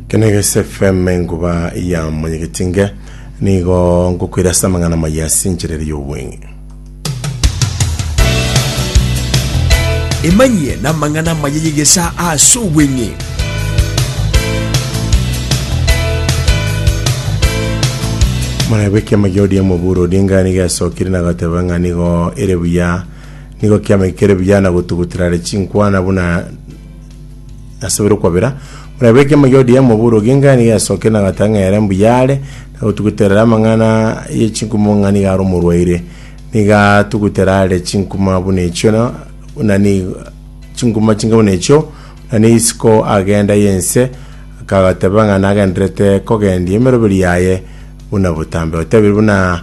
Kenegese FM enkuba ya monyegetinge nigo ngokwira ase amang'ana maya ase enchera ere y'obweng'e emanyie na amang'ana maya yegesa ase obweng'e mwana bw'ekema gia ODM Oburu Odinga nigo yasokire na agateba ng'a nigo ere buya Nigo kiamaikire buya na gotugutirare chinkwana buna asabire okwabera. Buna ebe ekiama gia ODM Oburu Oginga nigo yasokire na gatang'a ere mbuya are na gotuguterera amang'ana ye chinkuma ng'a nigo are omorwaire. Nigo atugutera are chinkuma buna echio na buna ni chinkuma chinge buna echio na ne isiko agenda yense akagateba ng'a nagenderete kogendia emeroberi yaye buna botambe. Otebire buna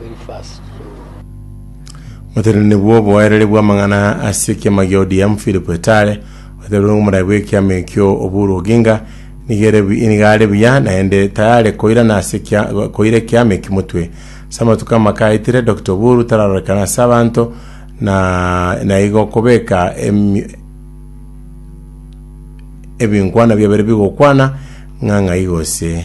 very fast. So Omoteneneri bw'oboereri bw'amang'ana ase ekiama gia ODM Philip Etale otebirie ng'a omorai bw'ekiama ekio Oburu Oginga nigo ere bu- nigo are buya naende tayare koirana ase ekia- koira ekiama ekio motwe. Ase amatuko amake aetire Doctor Oburu tararorekana ase abanto na naigo okobeka emi- ebinkwana biabere bigokwana ng'a ng'ai gose.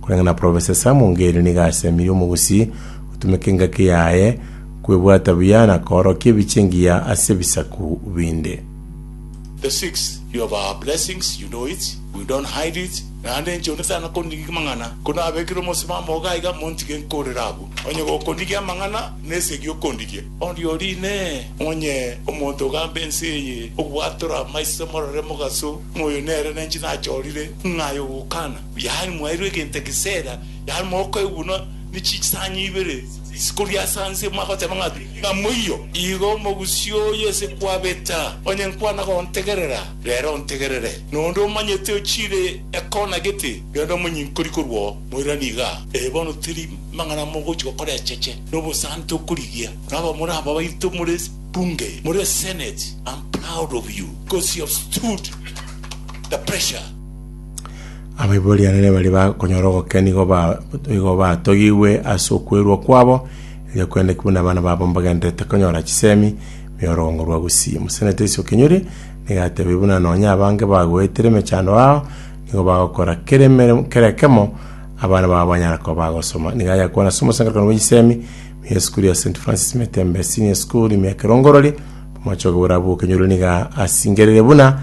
Korende na Profesa Sam Ongeri nigo asemirie omogusii gotumeka engaki yaye kwebwata buya na koorokia ebiche engiya ase ebisaku binde. The six you have our blessings you know it we don't hide it naende inche onde tana konigia amang'ana ko nabekire omosimamo ogo aiga montige nkorere abwo onye gokonigia amang'ana nesegi okondigia onde ori inee onye omonto ogamba ense eye obwatore amaiso morore mogaso ng'a oyo nere nenche nachorire ng'a aye ogokana Yaani mwairwe egento egeseera, yaani mokoegunwa ne chisanya ibere chikoria ase anse, mwagoteba ng'a ng'a moiyo. Igo omogusii oyo ase kwabeta, onye nkwana gontegerera, rero ontegerere, na onde omanyete ochiire ekona gete, rende omonyinkori korwao, moirane iga. Ee, bono teri mang'ana mogochi gokora echeche, na obosante okorigia, na abamura aba baito more bunge, more senate, am proud of you, because you have stood the pressure. Abaibori anene baria bakonyora ogokena nigo ba- nigo batogigwe ase okwerwa kwabo, erio kwendeki buna abana babo mbagenderete konyora chisemi, me orogongo rwa gusii. Mosenete isiko kenyori, nigo atebirie buna nonya abange bagoetire emechando yao, nigo bagokora kera emeremo kera ekemo abana babo banyare koba bagosoma. Nigo ayakwana ase omosangererekano bwa chisemi, me esukuru ya St. Francis Metembe Senior School, ime ya Kerongorori, omochie okoburabwo o kenyoro nigo asingerire buna.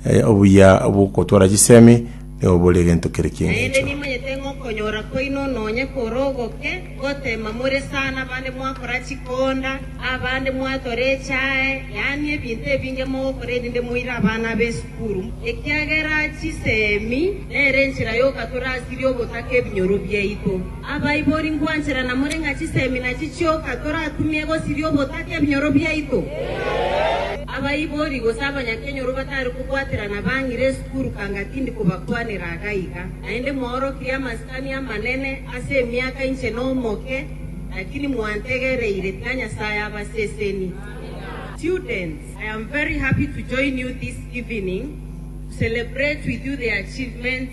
Aye obuya bw'ogotwara chisemi nigo bore egento kere ki'engecho. Naende nimanyete ng'a okonyora kwaino nonya kore ogoke, gotema more sana abande mwakora chikonda, abande mwatora echae, yaani ebinto ebinge mogokora erinde moire abana ab'esukuru, ekiagera chisemi nere enchera y'ogatura asiria ogotaka ebinyoro biaito. Abaibori ngwanchera na more ng'a chisemina chichioka torakumie gosiria obotaka ebinyoro biaito. Abaibori gose abanyakenyoro batari kobwaterana bang'ire esukuru kanga tindi kobakwanera iga iga. Naende mwaorokirie amasikani amanene ase emiaka inche nomoke, lakini mwantegereire, tiga Nyasae abaseseni. Students, I am very happy to join you this evening to celebrate with you the achievements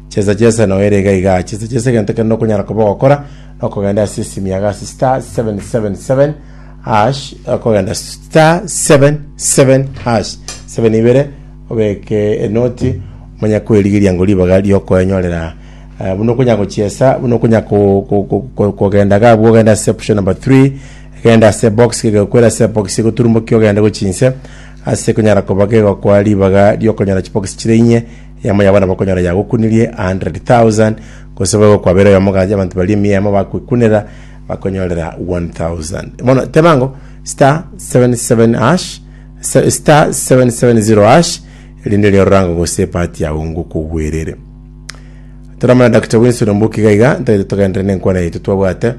Chesa chesa na oere iga iga. Chesa chesa egento kende okonyara koba ogokora na okogenda ase esimi yago ase star 777 hash okogenda star 77 hash 7 ibere obeke enoti omanye kwerigeria ngo ribaga riokoenyorera eh, buna okonya gochiesa buna okonya ko- ko- ko- ko- kogenda gabu ogenda ase option number 3 egenda ase box kegekwera ase box egoturumbokia ogende gochinse ase konyara koba kegokwa ribaga riokonyora chibokisi chire inye Eamo yabo nabo okonyora yagokunirie a hundred thousand, gose boigo kwabera oyomo gaki abanto baria emia emo bagkwekunera bakonyorera one thousand. Bono teba ng'o star seven seven hash se- star seven seven zero hash erinde erio ororanga gose epati yago ngokogwerere toramana dr wilson ombuki iga iga ntagete togenderere nenkwana yaito twabwate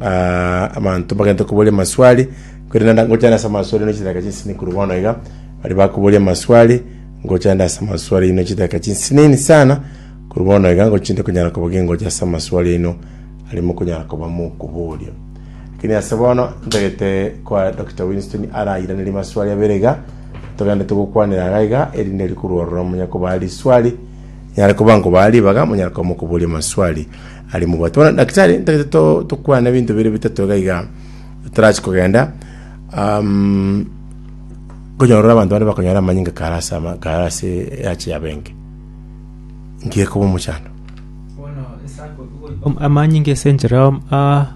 ah, abanto bagente koboria maswali kwerende ngochana ase amaswali no chidaka chinsini kuru bono iga bari bakoboria maswali Ngocha ande ase amaswali aino chidakika chinsinini sana, korwa bono iga ngochia inde konyara koba gingocha ase amaswali aino aria mokonyara koba mokoboria. Lakini ase bono ntagete kwa Dr. Winston arairanerie maswali abere iga, togende togokwanera iga iga, erinde rikorwa ororo monya kobaa riswali, nyare koba nkobaa ribaga, monyare koba mokoboria amaswali aria mobwate. Bono daktari, ntagete to- tokwane ebinto bire bitato iga iga, totarachia kogenda. Um, Nkonyorora abanto bande bakonyare amanyinga kare ase ama- kare ase eache yabo enke, inki gekoba omochando? Am- amanyinga ase enchera y'am- a-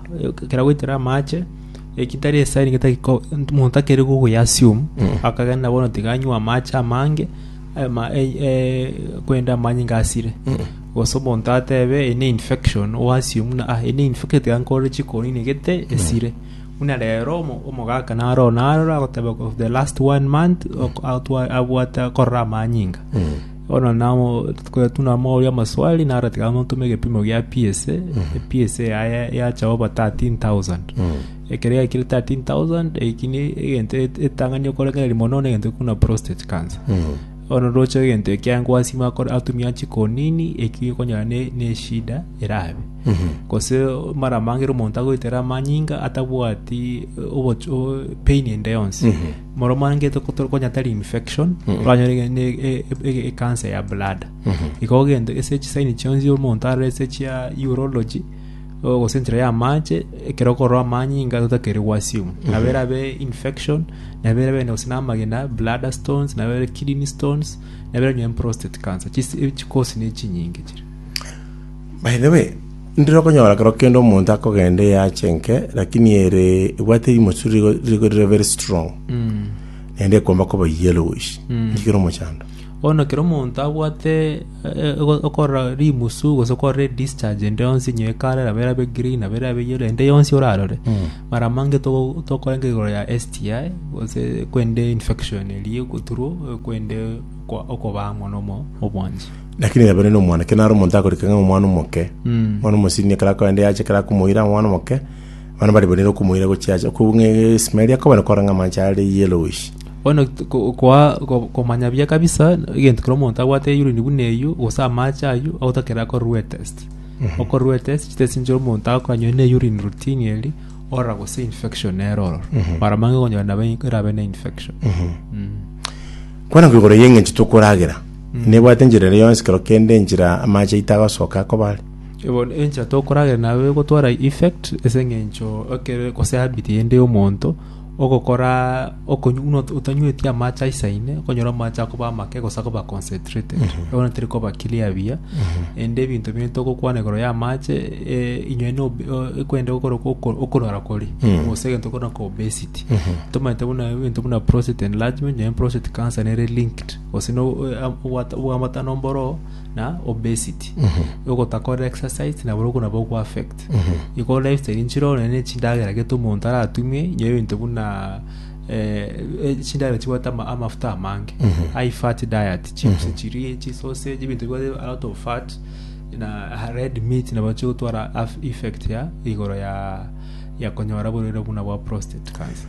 ekero agoitera amache, eki tari esani gete geko omonto takeri gogoyia assume, Mm. akagenda bono tiga anywe amache amange, ama- e- e- korende amanyinga asire. Mm. Gose omonto atebe eye ne infection, o assume buna ah eye ne infected tiga nkore chikoni negete esire. Buna rero omogaka naro oo naro oragoteba of the last one month ok- atwa- abwate akorora amanyinga bono namo tunamoboria amaswali naro tiga amontome egepimo gia PSA PSA yaye yacha oba 13000 ekero yaikire 13000 eki ne egento et- etang'ani okorengereria mono na egento ekuna prostate cancer Ororoche egento ekia gwasima akore atumia chikonini eki okonyora ne neshida erabe. Gose mara mangere omonto agoitera amanyinga atabwati eh, oboch- o- pain ende yonsi. Moro mangete konya tari infection, oranyore ge- ne- e- e- e- cancer ya bladder. Igo ogende ase chisaini chionsi omonto arore ase chia urology, gose enchera y'amaache, ekero okorora amanyinga totakeire gwasiomwa. Nabo erabe infection, nabo erabe ende gose namagena, bladder stones, nabo erabe kidney stones, nabo erabe nonya prostate cancer. Chis- eh, chikosi ne chinyinge chire. By the way, ndire okonyora ekero kende omonto akogenda eyache enke, lakini ere ebwate erimosu rigo rigo rire very strong, naende ekomba koba yellowish, nki kere omochando? Bono ekero omonto abwate okorora rimusu gose okorora edischarge ende yonsi inye ekarera abere abe green abere abe yellow ende yonsi orarore mara mange togo- tokorenge igoro ya STI gose korende infection eria egoturu korende okwa- okobaa amo na omo- obwancha Lakini nyabeire na omwana, ekero nare omonto akorikire ng'a omwana omoke, omwana omosini ekero akoenda yacha ekero akomoira omwana omoke, Abana baria bonire okomoira gochiacha okobua ng'a Ismaeli akobana kora ng'a amanche are yellowish. Bono t- ko- koa- ko- komanya buya kabisa egento kera omonto abwate eyurine buna eyio gose amache ayio agotakera akorerwe etest okorerwa etest chitest nchio omonto agokora nonye ne urine routine eri orora gose infection nere ororo mara mange okonyora nabo erabe ne infection Mm. Kwana kwa igoro y'eng'encho tokoragera. Nebwate enchera ere yonsi kero kende enchera amache aito agasoka akoba are. Bono enchera tokorageria naye egotwara effect ase eng'encho ekero gose habit ende y'omonto ogokora okonywa buna otanyweti amache aisaine okonyora amache akoba amake gose akoba concentrated bono teri koba clear buya ende ebinto bire togokwana igoro y'amache inywe no ekwenda gokora oko- okorwara koria gose egento kore na ko obesity tomanyete buna egento buna prostate enlargement nonye prostate cancer nere linked gose no obwate obwambatano mboro na obesity ogotakora exercise nabo okwo nabo ogo affect igo lifestyle nchiro nonye na echindagera gete omonto aratumie inye ebinto buna eh, eh, chindagera chibwate ama- amafuta amange high fat diet chips chirie chisausage ebinto bibwate a lot of fat na ah, red meat nabo chigotwara af- effect ya igoro ya ya konyora borwaire buna bwa prostate cancer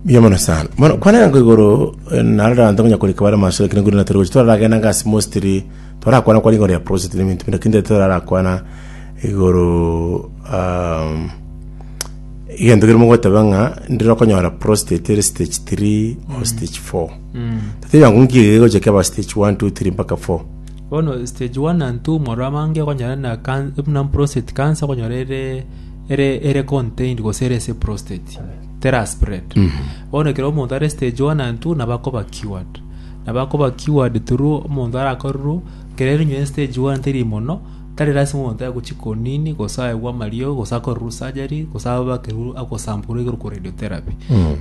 Mbuya mono sana. Mono kwanera ngo igoro eh, narara anto ngonya kurika bare masura kina ngurina tore gochi torara gena ngasi mostri torara kwana kwa ingoro ya prosit ni mintu mintu kinde torara kwana igoro um, igento kiri mogoteba nga ndiro konyora prostate ere stage 3 or mm. stage 4 mm. tatinya ngo ngire gochi kaba stage 1 2 3 mpaka 4 bono stage 1 and 2 moro amange konyora na kan na prostate cancer konyora ere ere ere contained gose ere se prostate tera spread bono ekero omonto are stage one and two nabo akoba cured nabo akoba cured through omonto arakorerwe ekero eronywa en stage one teri mono tari lasima omonto aye gochia konini gose aegwe amariogo gose akorerwe surgery gose abakerwe agosamporwa igoro korwa radiotherapy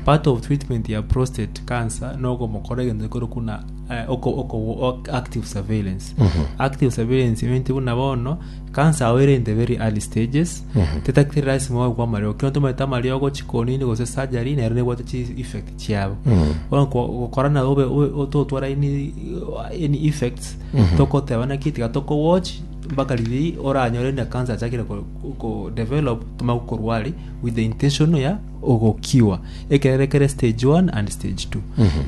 part of treatment ya prostate cancer nogomokora egento gekoro kuna eh, oko- oko- ok- active surveillance active surveillance means buna bono cancer yao ere in the very early stages Tetagiteri lazima wagwe amariogo. Ekero ntomanyete amariogo chikonini gose surgery nero nebwate chi effect chiabo. Bono ko- gokora na obe obe- ototwara any any effects tokoteba naki tiga toko watch mpaka riria oranyore na cancer yachakire ko- ko develop tomanye gokorwari with the intention ya ogo cure. Ekero ekere stage one and stage two.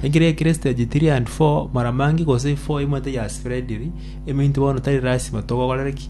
Ekero ekere stage three and four mara mange gose four emanyete ya spreadiri eminto bono tari lazima togogorere ki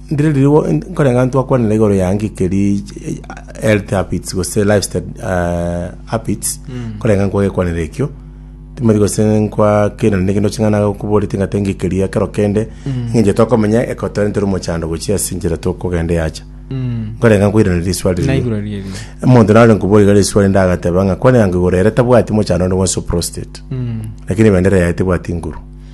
Ndire rirogo nkoreng'a ntwakwanera igoro ya ng'iki keri health habits gose lifestyle eh, habits nkoreng'a nkwa gekwanera ekio timori gose nkwa kera nende kende oching'ana koborete ng'ate ng'iki keri ekero kende ng'inche tokomenya ekotwarente ore omochando gochia ase enchera tokogenda yacha nkoreng'a nkoiraneria riswali riria naigura rieri omonto nare nkobore iga riswali ndagateba ng'a kwanera ngigoro ere tabwati mochando onde bwonsi o prostate lakini bendera yaye tebwati nguru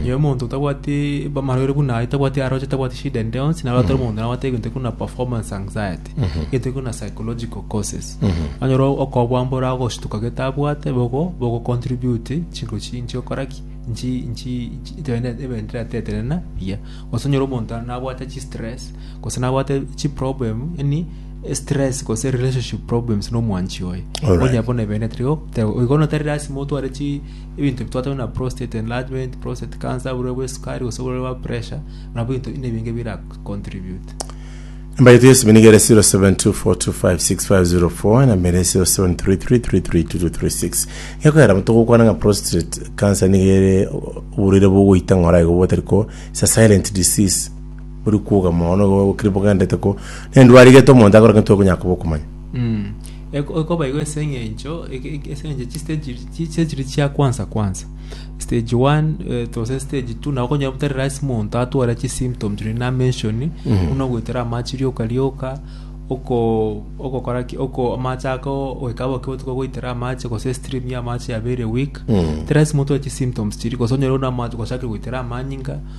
Inye omonto otabwati amarwaire buna aye, tabwati aroche, tabwati shida ende yonsi, naro atari omonto nabwate egento ekuna performance anxiety, egento ekuna psychological causes. Anyora okobua mbora agoshituka gete abwate bogo bogo contribute chinko chi inchi okora ki inchi inchi inchi ebende ebende tirateterena buya. Gose onyore omonto nabwate chi stress gose nabwate chi problem yaani stress gose relationship problems na omwanchi oye. Alright. Onye bono ebende tiri go- te- igo bono tari lazima otware chi Ebinto ebi twatebire na prostate enlargement, prostate cancer, oborwaire bwa esukari gose oborwaire bwa pressure nabwo ebinto buna ebinge bira contribute. Namba yetu yesime niga ere 0724256504 enamba ere 0733332236 gekogera amo togokwana ng'a prostate cancer niga ere oborwaire bogoita ng'ora igo botari ko it's a silent disease bori kwoga mono igo bokire bogenderete ko nendwari egete omonto akore ng'a titwari konyara koba okomanya Mm. Ekobaigwa ase engencho chistage chiria chia kwansa kwansa, stage one to stage two nabo okonyora tari lazima omonto atware chisymptoms chiria na mention buna ogoetera amache rioka rioka, ogokora ki amache ako goika bobe botuko goetera amache gose stream ya amache ya very weak tari lazima otware chisymptoms chiria gose onyore buna amache gochakire goetera amanyinga.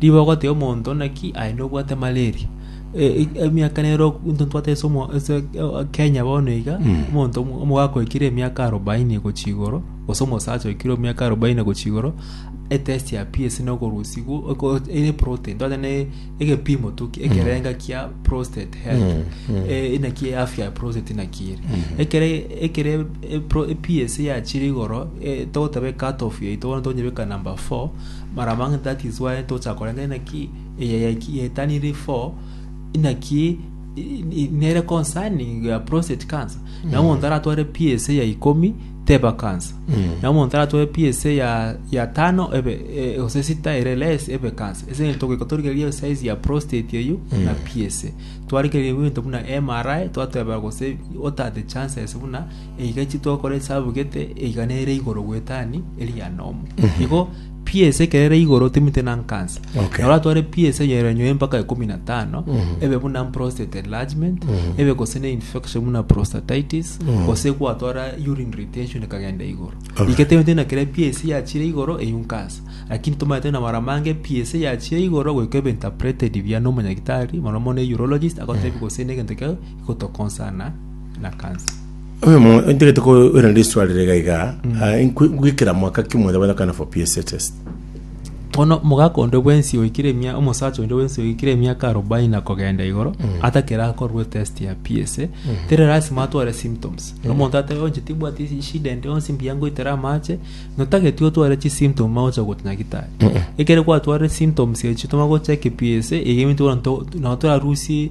Ribe ogoteba omonto naki aye nobwate malaria. Eh, emiaka nero ntotwate ase omo- ase eh, Kenya bono iga omonto omo- omogaka oikire emiaka arobaini gochia igoro gose omosacha oikire emiaka arobaini gochia igoro etest ya PS nokorusi gu- oko- ere protein twate ne egepimo tu ekerenga kia prostate health Eh, inaki afya ya prostate inaki ere ekere ekere eh, pro- eh, PS yachire igoro eh, togoteba cut off yaito bono tonyebeka number 4 Maramang'ana tatisware tocha korenta inaki eye yaki yetaniri for inaki nere concerning ya prostate cancer na omonto aratware PSA ya ikomi teba cancer na omonto aratware PSA ya ya tano ebe e, ose sita ere less ebe cancer ese ngento goika torigerie size ya prostate eyo na PSA twarigerie ngento buna MRI twateba gose what are the chances buna eiga chitokora esabu gete eiga nere igoro gwetani eria nomo igo piece ekero ere igoro timite na nkansa Okay. naro atware piece yerenyoe mpaka ikumi na tano ebe buna prostate enlargement ebe gose ne infection buna prostatitis gose gwatwara urine retention ekagenda igoro Alright. Ike tebete na kere piece yachire igoro eyio nkansa lakini tomaete na mara mange piece yachire igoro goika ebe interpreted buya nomonyagitari mono mono urologist agotebi gose ne egento kio gotokonsana na kansa. Oyo mo ntegete ko ira ndi swali rega iga ah, nkwi- gwikira mwaka kimweza bana kana for PSA test. Bono mogaka onde bwensi oikire emia omosacha onde bwensi oikire emiaka arobaini na kogenda igoro atakera akorwe test ya PSA tere lasima atware symptoms omonto atebe onche tibwati shida ende onsi mbuya ngoitera amache notageti otware chi symptom magocha gotu nyagitari ekere gwatware symptoms echi toma gocheki PSA egeminto bono to- nabo torarusie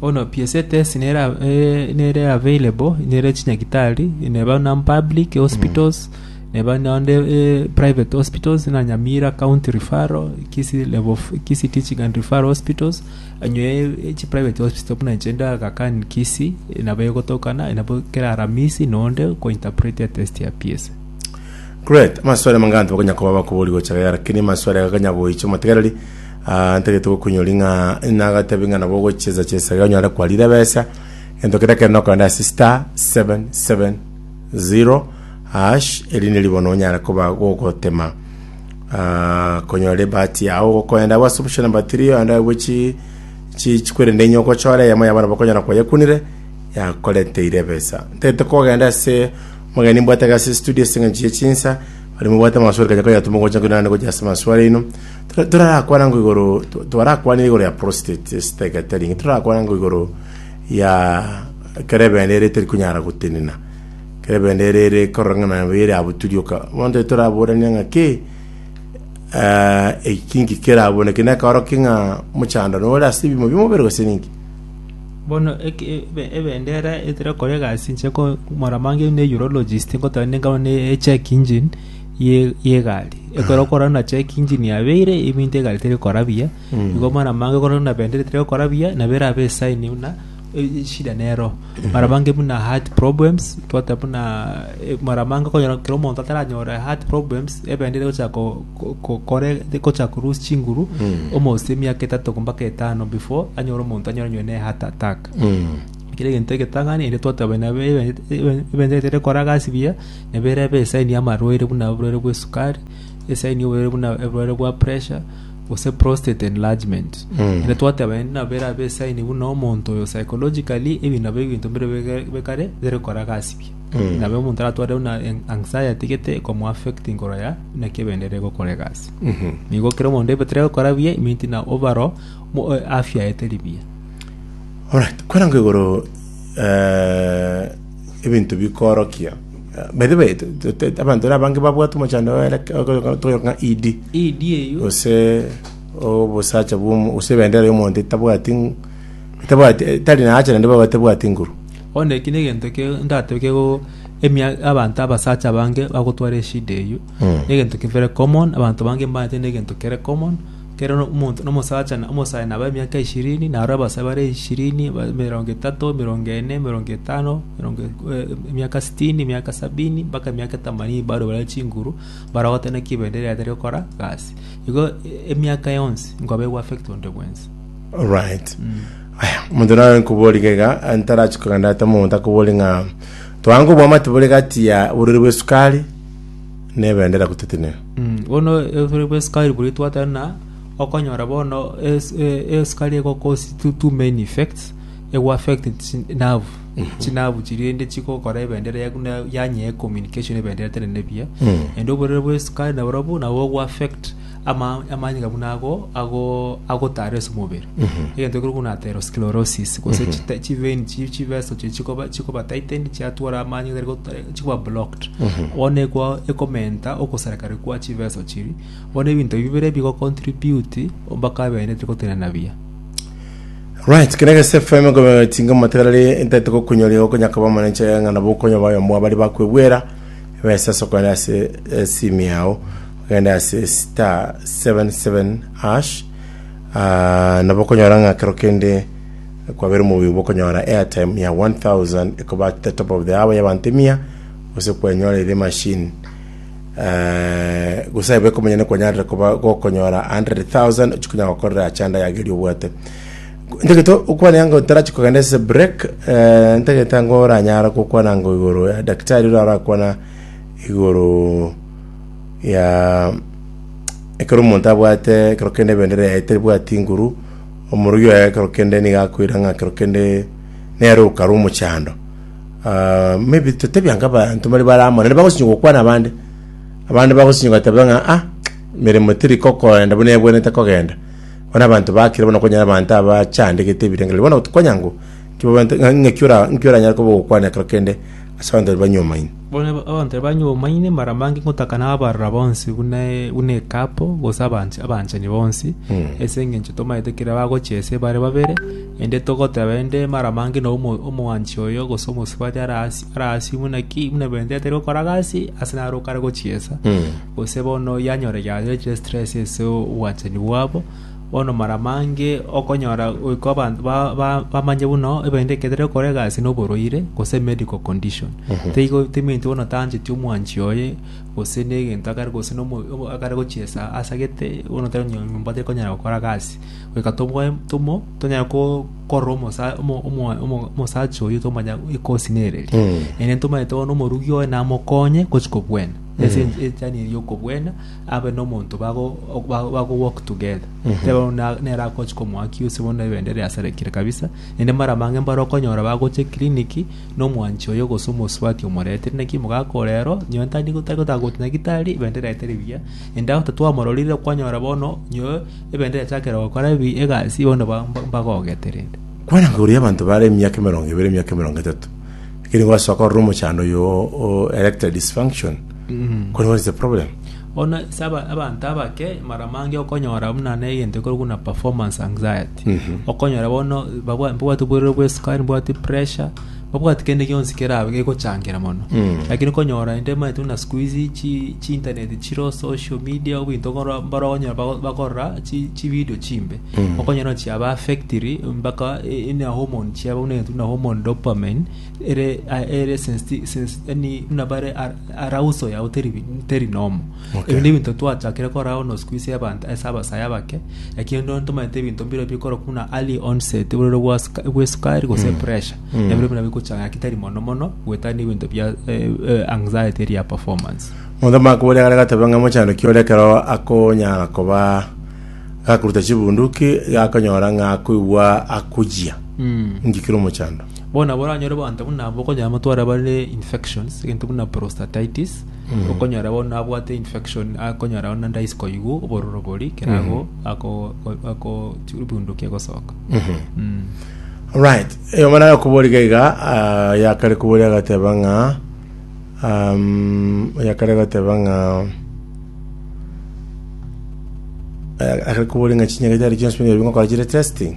Bono PS test nere a- eh, nere available nere chinyagitari neba non public hospitals neba nonde eh, private hospitals na nyamira county referral kisi level f- kisi teaching and referral hospitals anywe eh, chi private hospital buna inche ndagakan kisi eh, nabo egotokana eh, nabo kera aramisi nonde ko interpret etest ya PS Great. Amaswali amange abanto bakonya koba bakobori gocha gaya, lakini maswali aya gakanya goicha omotegereri Aa, ntagete gokunyori ng'a nagatebi ng'a nabo ogochesa chesa iga onyare kwarire ebesa, gento keria kende nokogenda ase star seven seven zero hash, eri neri bono onyare koba gogotema ah, konyora ebahati yao gokogenda abwo ase option number 3 oyende abwo chi chi chikwerende inye ogochora eyemo yabo nabo okonyora kwayekunire yakoreteire ebesa ntete kogenda ase mogeni mbwate iga ase studio ase eng'encho ye chinsa bari mobwate amaswali kanya koyatuma gocha kore naende gocha ase amaswali aino Torarakwana ngo igoro twarakwanire igoro ya prostate estegetaring torarakwana ngo igoro ya kerebende ere teri kunyara gotenena kerebende ere ere korora ng'a nayo ere abwo turioka bonde toraborania ng'a ke eh, ekinki keraboneke nekaro king'a mochando nore ase bimo bimobere gose ninki bono eke- ebe- ebendera etera kore gasi nche ko moramange ne urologist ngotari nengao ne check engine ye- yegari ekero okora na check engine yabeire ebinto egari teri gokora buya igo mara mange okore buna bendera etari gokora buya nabo erabe esign buna e- eshida nero mara mange buna heart problems twateba buna eh, mara mange okonyora kera omonto ataranyore heart problems ebendera egochaka ko- ko- ko- kore egochaka ko loose chinguru omosee emiaka etato mpaka etano before anyore omonto anyaraniwe ne heart attack kere egento egetang'ani ere twateba nabe ebe- ebe- ebendera etari gokora gasi buya Neberebe esaini y'amarwaire buna oborwaire bw'esukari, esaini y'oborwaire buna oborwaire bwa puresha, gose prostate enlargement. Ere twateba endi nabo erabe esaini buna omonto oyo psychologically ebi nabo ebinto mbire bige- bikare bire kora gasi pi. Nabo omonto aratware buna en- anxiety gete ekomoaffect igoro ya buna ki ebende ere gokora egasi. Nigo ekero omonto ebe tari gokora buya it means na obaro mo- afya yaye teri buya. Alright, kweranga igoro eh, ebinto bikoorokia. Eh, By the way, t- t- t- abanto ere abange babwate omochando oere toyoka ng'a ED ED eyo gose obosacha bwomo gose ebendera y'omonto etabwati ng- etabwati etari naacha naende baba etabwati nguru bono eki negento ke ndatebe kego emia abanto abasacha abange bagotwara eshida eyio Mm. negento kebere common abanto bange mbaete negento kere common Kera omonto nomosacha na omosae nabe emiaka ishirini, na aroro abasae bare ishirini, emerongo etato, emerongo ene, emerongo etano, emiaka sitini, emiaka sabini, mpaka emiaka etamanini barwe bare chinguru, mbarogotane naki ebende eria etari gokora gasi. Igo emiaka yonsi nkoba egoaffect onde bwensi. Alright. Aya, omonto naro nkoboria iga iga, eh, ntarachi kogenda ata omonto akoborie ng'a, twange oboamate bore gati ya oborori bw'esukari nebendera gotetenena. Bono ebere bw'esukari boria twateba buna okonyora bono es- e- esukari ego cause two- two main effects ego affect chi- nerve chinavu chiria rende chigokora ebendera yaku na yanyea ecommunication ebendera etenene buya rende oborere bw'esukari naborobwo nabo bogo affect Ama- amanyinga buna ago ago agotara ase omobere egento ekero buna atherosclerosis gose Mhm. chita- chivein chi- chiveso chiri chikoba chikoba tightened chiatwara amanyinga tari gota- chikoba blocked Mhm. bono ekwa ekomenta ogosarekare kwa chiveso chiri bono ebinto ebi bibere bigocontribute mpaka abene tari gotenena buya Right, kere gese FM gobe tinga mategarari ntete gokunyoria okonya koba manenche ng'ana bokonya bayo mwa bari bakwebwera besa soko yase eh, simi yao Ogende ase star seven seven hash ah, nabo okonyora ng'a kero kende kwabeire omobuya obo okonyora airtime ya 1000 ekobatete top of the hour y'abanto emia gose kwenyorire machine eh, gose aye bekomonyene kwanyarire koba gokonyora 100,000 ochikonya gokorera achanda yageria obwate ntegeto okwana yango tarachi kogenda ase break eh, ntegeta ngo oranyara gokwana ngo igoro ya daktari ora arakwana igoro ya ekero omonto abwate ekero kende ebendera yaye tebwati nguru, omorogi oye ekero kende nigo akoira ng'a ekero kende nere okare omochando. Ah, maybe totebi anga abanto mbari bare amo naende bagosinyoka gokwana abande, abande bagosinyoka goteba ng'a ah, emeremo teri kokoenda buna ebwenerete kogenda. Bono abanto bakire bono okonyora abanto abachandegete ebirengo riria bono tokwenya ngu, nki baba- ng'a- ng'a- ng'aki ora- ng'aki oranyare koba ogokwana ekero kende ase abanto baria banyomaine. Bono abanto aba banyomaine mara mange ngotaka na abarora bonsi buna buna ekapo, gose abanch- abanchani bonsi, ase engencho tomaete ekero bagochia ise bare babere, ende togoteba ende mara mange na omo- omwanchi oyo gose omosubati ara asi ara asi buna ki, buna bende atari gokora gasi ase naro okare gochiesa, gose bono yanyora yare chire stress ase obwanchani bwabo, Bono mara mange okonyora goika abanto bamanye buna ebende eketerire korega ase noborwaire gose medical condition. Teigo teminto bono tancheti omwanchi oye gose negento akare gose akare gochiesa asagete bono tari nyomba tekonyara gokora gasi. Goika toboe tomo tonyare korora omosacha oye tomanye ekosi nereri. Ere ntomanyete bono omorugi oye namokonye gochia kobwena. Ase enchera eye yokobwena. abe nomonto bago bago bago work together tebe bono na- nere akochi komoaki ase bono ebende riasarekire kabisa ende mara mange mbare okonyora bagocha eclinic nomwanchi oyo gose omosubati omoretire naki mogaka ore ero nonye tari gotari gotaka gocha nyagitari ebende riaeteri buya ende agoto twamororire okwanyora bono nyoe ebende riachakire gokora ebi egasi bono ba- ba- mbagogete rende. Kwana nkaruria abanto bare emiaka emerongo ebere emiaka emerongo etato, ekero nigo asoka korora omochando oyo o- o erectile dysfunction, Kore what is the problem? bono ase aba- abanto abake mara mange okonyora buna na egento ekorokwa buna performance anxiety okonyora bono babwa- mbabwate oborwaire bwa esukari mbabwate pressure mbabwate kende gionsi kerabe gegochangera mono lakini okonyora inde omanyete buna sikuizi chi- chiintaneti chiro social media obinto okoro- mbaro okonyora bago- bakorora chi- chividio chimbe okonyora buna chiaba affectiri mpaka e- ene hormone chiabo buna egento buna hormone dopamine ere ere sensti sensi yani buna bare ar- arauso yao teri teri nomo Okay. ebinto ebinto twachakire kora ono siku ise abantu ase abasaya bake lakini ndo ntomanyete ebinto mbire bikoro kuna early onset bororo bwa suka- bwa esukari gose Mm. pressure Mm. ebiro buna bikuchanga ki tari mono mono gwetani ebinto bia eh, eh, anxiety ria performance Mothama akoboria gare gatobe ng'a mochandoki ore ekero akonyara koba gakuruta chibunduki gakonyora ng'a akoigwa akujia. Mm. Inki kire omochando? Bono nabo oranyore abanto buna aba okonyora amatware bare infections egento buna prostatitis okonyora bono abwate infection akonyora bono naende aise koigwa obororo bori kerago ako ako bundukia gosoka Mm. right eyo mana yakoboriga iga ah, yakare kobori agateba ng'a um, yakare agateba ng'a eh, akare kobori ng'a chinyagete ari chionsi buna ebingo kora chire testing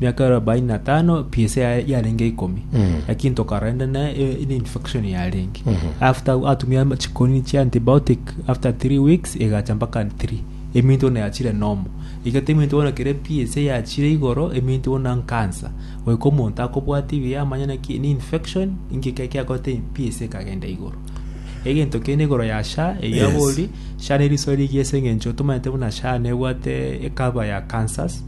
miaka arobaini na tano psa ya- yarenge ikomi lakini tokara ende ne e- ene infection yarenge after atumia chikoni chia antibiotic after three weeks egacha mpaka three eminto bono yachire nomo egete eminto bono kere psa yachire igoro eminto bono nkansa goika omonto akobwati buya amanye naki ne infection inki kia- kiakorete psa ekagenda igoro egento kende igoro ya sha eyio Yes. abori sha neriso rigiya ase eng'encho tomaete buna sha nebwate ekaba ya cancers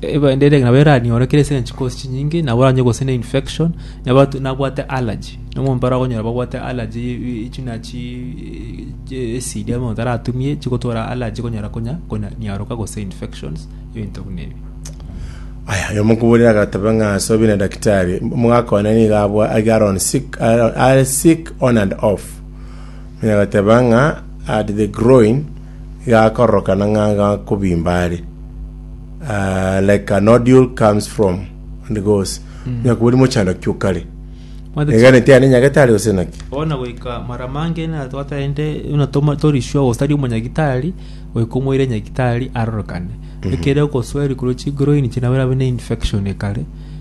Ebaindi ere nabo eraniorekire ase eng'encho cause chinyinge nabo oranywe gose ne infection nabo at- nabwate allergy na omonto mbare okonyora babwate allergy y- y- y- ching'a chi eh, acid amo otaratumie chigotwara allergy okonyora konya konya niaroka gose infections ebinto buna ebi. Aya, oyo omokuburire agateba ng'a ase obi na daktari, omogaka one nigo abwa iga are on sick, are, are sick on and off. Onye agateba ng'a at the groin, igakororokana ng'a gakobimba are uh, like a nodule comes from and goes mm. nyakubori mochando kiokare eganete ane nyagete are gose naki ona goika mara mange na twataende una toma torishwa gosari omonyagitari goika omoire nyagitari arorokane ekere ogosweri kuro chigroin chinabera bene infection ekare